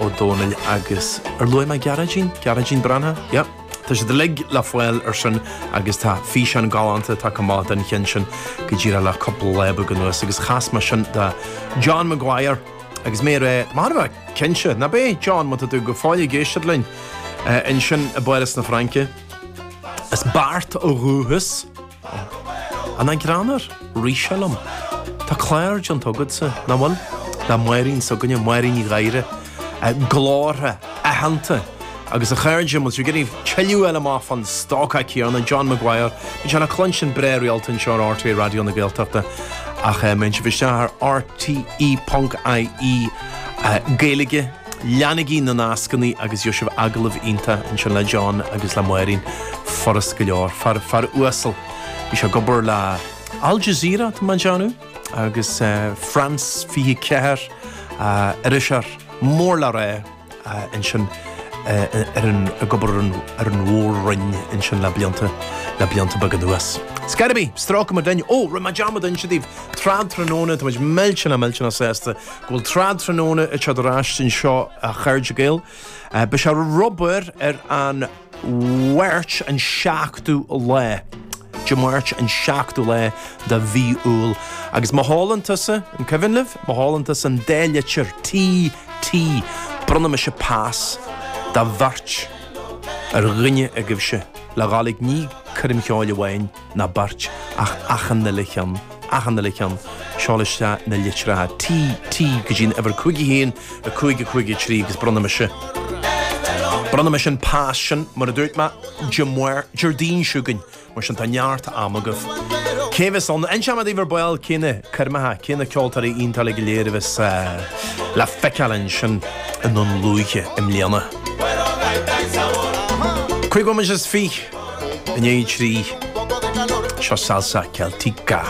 Ó Dónaill agus, ar luaigh mé Gearóidín? Gearóidín Breathnach? Yep. Tá siad uilig le fáil ar sin agus tá físeán galánta atá chomh maith den cheann sin go díreach le cúpla lá beag anuas agus chas mé sin do John Maguire agus mé ar é marbh, cinnte, ná beidh, John, má tá tú go fóill ag éisteacht linn ansin i bPáras na Fraince. As Beart ó dhúchas. An ag drannadh ríse liom? Tá clár déanta agatsa, nach bhfuil? Le Máirín s'againne, Máirín Ní Ghadhra, glórtha aitheanta agus a chairde, má tá sibh ag iarraidh tuilleadh a fháil amach fán stócach céanna, John Maguire, bíonn sé le cluinstin breá rialta anseo ar RTÉ Raidió na Gaeltachta ach má théann sibh isteach ar rte.ie Gaeilge. Leanaigí na nascannaí agus gheobhaidh sibh agallamh iontach ansin le John agus le Máirín. Furast go leor. Fear, fear uasal. Bhí sé ag obair le Al Jazeera, tá mé ag déanamh, agus France 24, iriseoir mór le rá ansin ar an, ag obair ar an Mhór-Roinn ansin le blianta, le blianta beaga anuas. It's gotta be! Stróicfimid linn. Ó, rinne mé dearmad inse daoibh, trad tráthnóna, táimid millteanach, millteanach sásta Go bhfuil trad tráthnóna ag teacht ar ais anseo a chairde Gael. Beidh sé ag obair ar an Mháirt an seachtú lá, Dé Máirt an seachtú lá de mhí Iúil. Agus má sheolann tusa, an cuimhin libh, má sheolann tusa an dá litir TT, bronnfaidh mise pas do bheirt ar dhuine agaibhse le dhul ag ní coirm cheoil amháin. ná beirt, ach achan uile cheann, achan uile cheann, seol isteach na litreacha T, T go dtí an uimhir 5 1, 5 5 3 agus bronnfaidh mise, bronnfaidh mise an pas sin, mar a dúirt mé, ar an, Déardaoin chugainn, mar sin tá neart ama agaibh. Cé a bheas ann? Inseoidh mé daoibh ar ball cé na coirmeacha, cé na ceoltóirí iontacha go léir a bheas le feiceáil ansin i nDún Lúiche i mbliana. Cúig bhomaite is fiche. Inné trí seo Salsa Celtica.